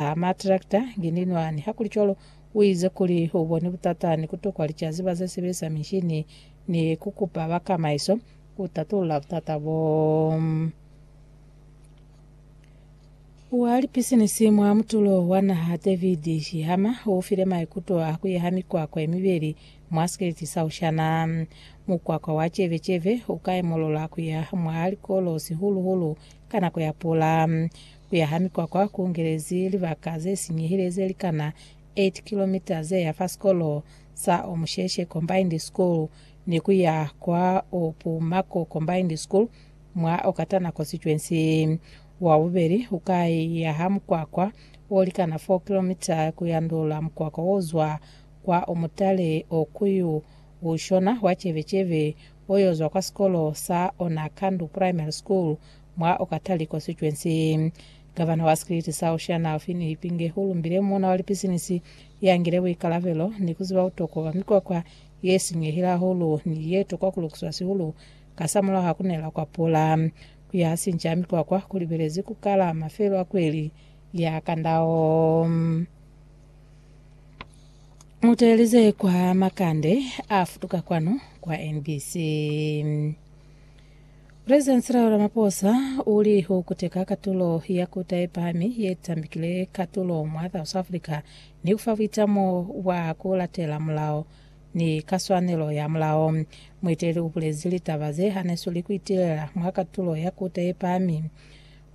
a matrakta, ngininwani. Hakulicwalo, uize kuli uboni butata ni kutokwa licaziba zesebelisa mishini ni kukupa bakamaiso kutatulula butata boo. Wa lipisinisi mwa mutulo wa naha David Shihama ufile maikuto a kuyaha mikwakwa yemibeli mwa sikeleti sa Ushana. Mukwakwa wa Chevecheve ukaimolola kuya mwa likolo sihulu-hulu ka nako ya pula. Kuya ha mikwakwa ku ngelezi libaka ze sinyehile ze li kana 8 kilomita ze ya fa sikolo sa Omusheshe Combined School ni ku ya kwa Opumako Combined School mwa Okatana Constituency. Wa bubeli u ka ya ha mukwakwa o likana 4 kilomita ku yandula mukwakwa wo zwa kwa Omutale o ku yo u shona wa Chevecheve o yo zwa kwa sikolo sa Onakandu Primary School Mwa okatali constituency, Gavana wa Skiliti sa Oceania Alfie Niyipinge u lumbile muuna wa lipisinisi ya ngile buikalabelo ni ku ziba butokwa bwa mikwakwa ye sinyehile hahulu ni ye tokwa ku lukiswa sihulu kasamulaho ha ku nela kwa pula. Ku yaha sinca ha mikwakwa ku libelezi ku kala mafelo a kweli ya kandao. Mu teeleze kwa makande a futuka kwanu kwa NBC. President Cyril Ramaphosa u li u kuteka katulo ya kuta ye pahami ye tambikile katulo mwa South Africa ni ku fa buitamo bwa ku latela mulao ni ka swanelo ya mulao. Mueteli u bulezi litaba ze hanesweli ku itilela mwa katulo ya kuta ye pahami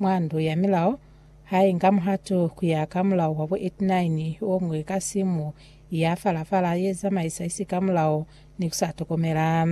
mwa ndu ya milao ha inga muhatu ku ya ka mulao wa bo 89 o ngwe ka simu ya fala-fala ye zamaisa isikamulao ni ku sa tokomela.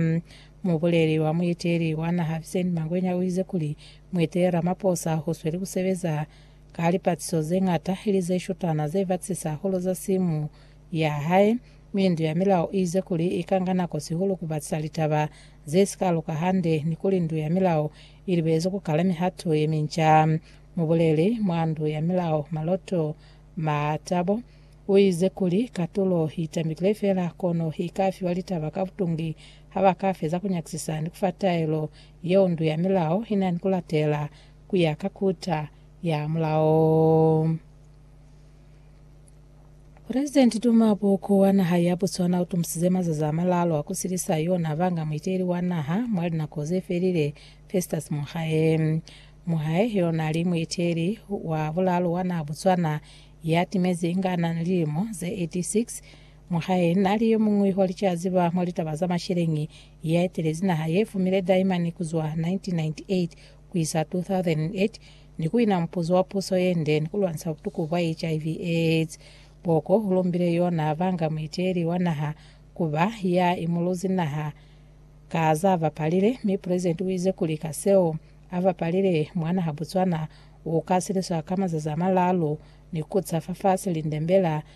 Mubuleli wa muiteli wa naha Vincent Mangwenya uize kuli Mueteli Ramaphosa usweli kusebeza ka lipatiso zeñata ili zeshutana zebatisisa hahulu za simu ya hae, mi Ndu ya Milao iize kuli ika nga nako sihulu kubatisa litaba zesika luka hande ni kuli Ndu ya Milao ilibelezi kukala mihato yeminca. Mubuleli mwa Ndu ya Milao Maloto Mathabo uize kuli katulo itambilile feela kono ika fiwa litaba ka butungi ha ba ka feza ku nyakisisa ni ku fa taelo yeo ndu ya milao i na ni ku latela ku ya ka kuta ya mulao. Presidenti Duma Boko wa naha ya Botswana u tumusize mazazi a malalu a ku silisa yona banga muiteli wa naha mwa linako ze felile, Festus Mogae. Mogae yo na li muiteli wa bulalu wa naha Botswana ya timezi inga na ni lilimo ze 86 Mwahae na li yo muñwi wa licaziba mwa litaba za masheleñi ya etelezi naha ye fumile Daimani ku zwa 1998 ku isa 2008 ni ku wina mupuzo wa puso ye nde ni ku lwanisa butuku bwa HIV, AIDS. Boko u lumbile yo n'a banga muiteeli wa naha ku ba ya imuluzi naha ka z'a bapalile, mi Pulezidenti u ize kuli ka seo a bapalile mwa naha Botswana, u ka siliswa ka mazazi a malaalu ni ku ca fafasi lindembela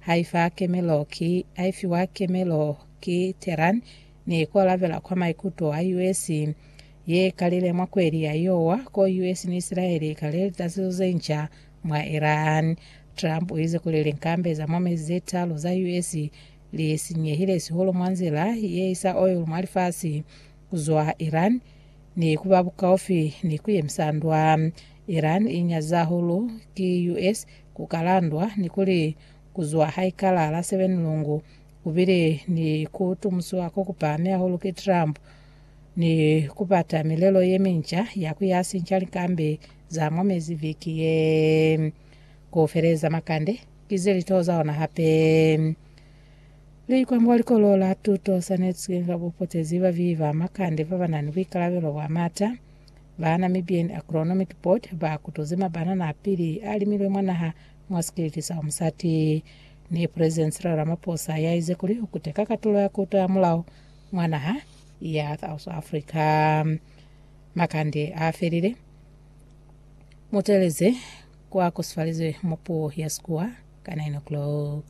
Haifa kemelo ki haifiwa kemelo ki Tehran ni ko lavela kwa maikuto a US ye kalile mwa kweli ya Iowa ko US ni Israel i kale litaziso ze nca mwa Iran. Trump u ize kuli linkambe za mwa mezi ze talu za US li sinyehile sihulu mwa nzila ye isa oil mwa lifasi ku zwa Iran ni ku ba bukaufi ni ku yemisa ndwa. Iran i nyaziza hahulu ki US Ku ka landwa ni kuli ku zwa haikala la 7 Lungu ku bile ni ku tumusiwa ko ku pahami hahulu ki Trump ni ku bata milelo ye minca ya ku ya sinca likambi za mwa mezi viki ye. Ku feleza makande ki ze litoho za ona hape. Likwambo wa Likolo la Tuto Sane Tshikinga bu potezi bavihi ba makande ba ba na ni buikalabelo bwa m'ata Ba Namibian Agronomic Board ba kutuzi mabanana a pili a limilwe mwa naha mwa sikiliti sa umusati, ni President Cyril Ramaphosa ya ize kuli u kuteka katulo ya kuto ya mulao mwa naha ya South Africa. Makande a felile, mu teeleze kwa kusifalizwe mwa puo ya Sekua ka 9 o'clock.